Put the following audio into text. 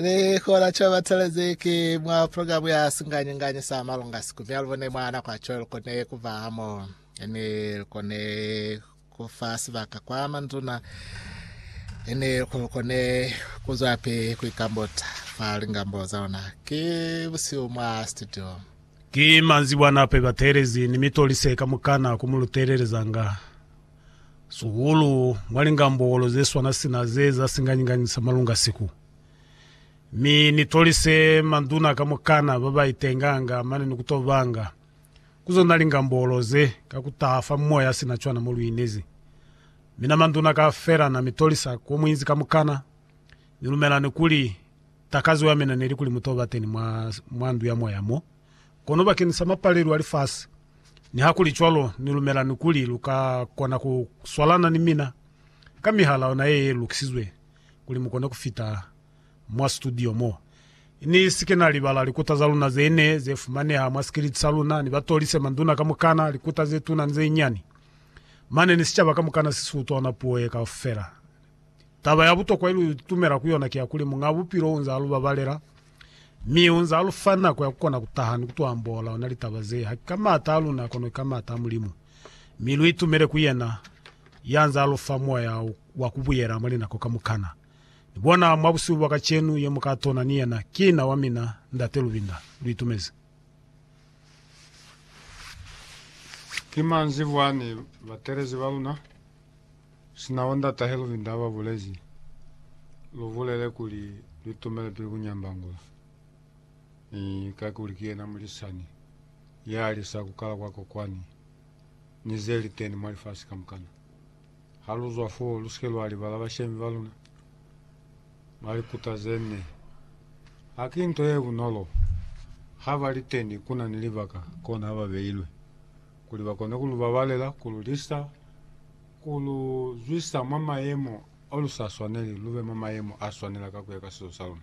Ni kola co batelezi ki mwa programu ya Singanyinganyi sa Malunga siku mya lubone mwa nako ya co lukone kuba hamo ni lukone kufa sibaka kwa manduna ni lukone kuzwapi kuikambota fa lingambo za ona. Ki busihu mwa studio. Ki manzibwana pe batelezi ni mitolise kamukana ku mu lutelelezanga. Sukulu mwa lingambokolo ze swana sina ze za singanyikanyi sa malunga siku. Mi ni tolise manduna kamukana ba ba itenganga mane ni ku to banga ku zona lingambokolo ze ka ku taha fa moya sina cwana mo lu inezi. Mina manduna kaufela na mi tolisa ko mu inzi kamukana, ni lumelani kuli takazo ya mina ne li kuli mu to ba teni mwa, mwa ndu ya moya mo. Kono bakeñisa mapalelu a lifasi, nihakulicwalo, ni lumelani kuli lu ka kona ku swalana ni mina ka mihala yona ye ye lukisizwe kuli mu kone ku fita mwa situdio mo. Ni si ke na libala likuta za luna ze ne ze fumaneha mwa sikiliti sa luna, ni ba tolise manduna kamukana, likuta ze tuna ni ze nyani. Mane ni sicaba kamukana si si utwa ona puo ye kaufela Taba ya butokwa ye lu itumela ku yona ki ya kuli Muñ'a Bupilo u nz'a lu babalela, mi u nz'a lu fa nako ya ku kona ku taha ni ku tuambola ona litaba ze, haki ka m'ata a luna kono ki ka m'ata a Mulimu. Mi lu itumele ku yena ya nz'a lu fa moya wa ku buyela mwa linako kamukana. Ni bona mwa busihu bwa kacenu ye mu ka tona ni yena ki na wa mina, Ndate Lubinda. Lu itumezi. Ki manzibwa ni batelezi ba luna. Sina wonda tahe luvinda haba bulezi lubulele kuli luitumele pili kunyambangula ni ka kuli ki yena mulisani ya alisa kukala kwa kokwani ni ze li teni mwa lifasi kamukana. Ha lu zwa foo, lu sike lwa libala bashemi ba luna ba likuta ze ne. Ha ki nto ye bunolo ha ba li teni ku na ni libaka kona ha ba beilwe kuli ba kone ku lu babalela, ku lu lisa, Ku lu zwisa mwa mayemo ao lu sa swaneli, lu be mwa mayemo a swanela ka ku ya ka sizo sa luna.